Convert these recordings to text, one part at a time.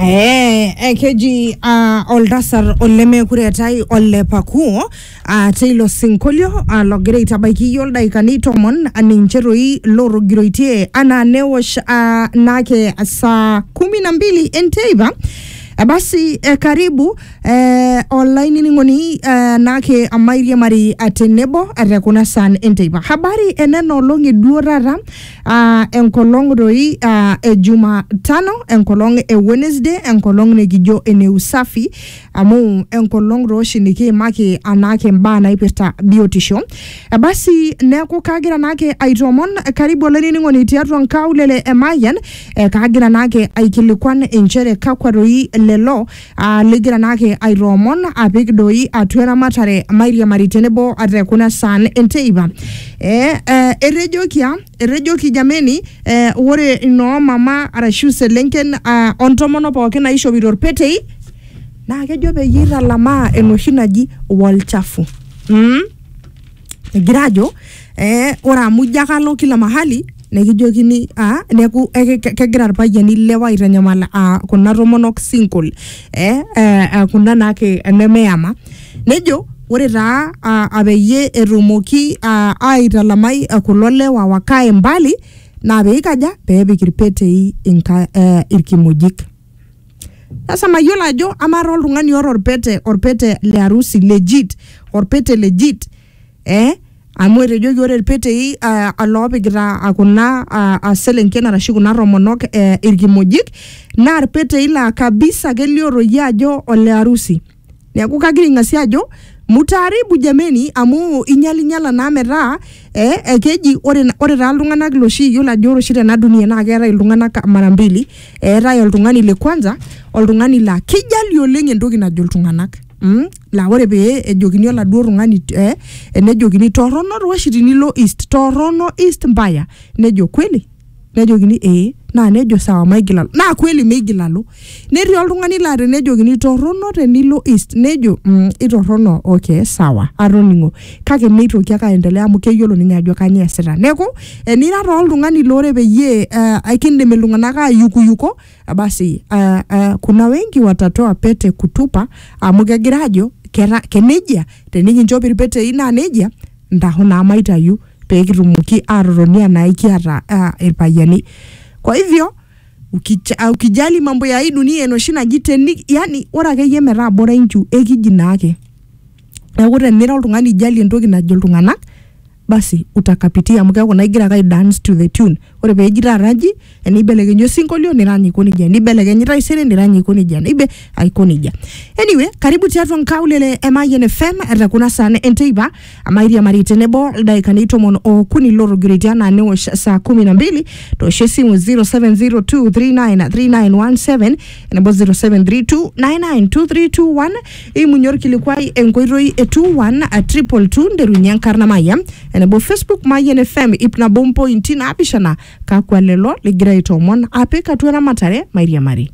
Eh, eh, keji uh, oltasar olemekure etai ole pakuo uh, teilo sinkolio uh, logira aitabaiki iyie oldaikani tomon uh, ninche toi lorogiroitie anaa newosh uh, naake saa kumi na mbili enteipa Eh, basi eh, karibu eh, olainining'oni eh, naake amairiamari eh, tenebo eh, te kuna saan enteipa habari enena olong'i duo taata Ah, enkolong doi ah, e Jumatano, enkolong e Wednesday, enkolong nikijo ene usafi amu enkolong doi oshi nikiimaki anaake imbaa naipirta biotisho. Eh, Basi neeku kagira naake aitoomon karibu olainining'oni tiatua nkaulele e Mayian eh, kagira naake aikilikuan inchere kakwa doi lelo aa ligira naake aitoomon apik doi atua eramatare mairiamari tenebo ate kuna saan enteipa eh, eh, etejokia etejoki jameni eh, ore inoo mama arashu selenken ah, ontomono pookin naishopito irpetei naa kejo peyie italamaa enoshi naji wolchafu mm? egira ajo eh, ore amu ijo ake alo kila mahali nekijokini ah, neku eh, ke- kegira irpayiani ilewa aitanyamal ah, kuna tomonok single eh, eh, eh, kuna naake nemeyama nejo ore taa ah, ah, peyie etumoki ah, aitalamai ah, kulo lewa wakae mbali naa peikaja peepik irpetei inka, eh, irkimojik Sasa mayiolo ajo amaa taa oltung'ani oota orpete orpete le harusi legit orpete legit eh amu etejoki ore irpetei uh, oloopikita uh, kuna uh, uh, selenken arashu kuna tomonok eh, irkimojik naa irpetei laa kabisa kelio toi ajo ole harusi Neaku kagira aing'asie ajo mutaaribu jameni amu inyalinyala naa metaa eh, ekeji ore, ore taa iltung'anak loshi iyiolo ajo ore oshi tena dunia naa keetae iltung'anak mara mbili eetae oltung'ani le kwanza oltung'ani laa kijali oleng entoki najo iltung'anak mm? laa ore pee ejokini oladuo tung'ani eh, enejokini torrono toi oshi tinilo east torrono east mbaya nejo kweli nejokini ee naa nejo sawa maigil alo naa kweli meigil alo netii oltung'ani laa tenejokini torrono tenilo east nejo mm, itorrono okay sawa atoning'o kake meitoki ake aendelea amu keyiolo ninye ajo kanyoo easita neeku enira taa oltung'ani loore peyie uh, aikindim iltung'anak ayukuyuko basi uh, uh, kuna wengi watatoa pete kutupa amu kegira ajo kera kenejia tenikinchop irpetei naa nejia ntaho naa maitayu pee kitumoki aatotoni anaa ikiata ah, irpayiani kwa hivyo ukija- ah, ukijali mambo ya hii dunia enoshi naji teni yani ore akeyie metaa bora inchu ekiji naake neeku tenira oltung'ani ijali entoki najo iltung'anak basi utakapitia amu keeku naa igira ake ai dance to the tune ore peji taata naji enibelekenyi osinkolio nirany aiko nejia nibelekenyi taisere nirany aiko nejia nibe aiko nejia anyway karibu tiatua nkaulele e Mayian FM te kuna saan enteipa amairiamari tenebo ildaikani tomon okuni lotogiriti anaa newosh saa kumi na mbili toosho esimu 0702393917 enebo 0732992321 Eimunye olkilikuai enkoitoi e 212 nterunye enkarna Mayian enebo Facebook Mayian FM ip nabo mpointi naapishana kakwa lelo ligira aitoomon apik atua eramatare mairiamari.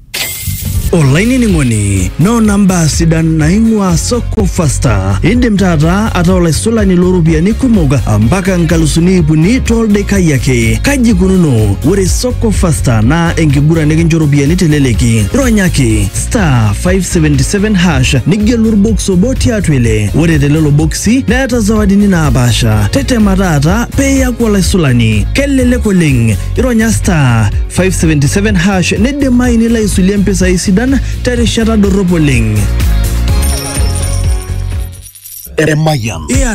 olainining'oni noona mbaa sidan naing'ua soko fasta indim taata ataa olaisulani looropiyiani kumok mpaka nkalusuni iip uni toldekai ake kaji ikununo ore soko fasta naa enkiguran nikincho ropiyiani teleleki ronyaki star 577 hash nigelu orbox obo tiatua ile ore telelo boksi neeta zawadini naapaasha tetema taata peeyaku olaisulani kelelek oleng ironya star 577 hash nidimayu nilo aisulie mpisai sidan terishata dorrop oleng Emayian.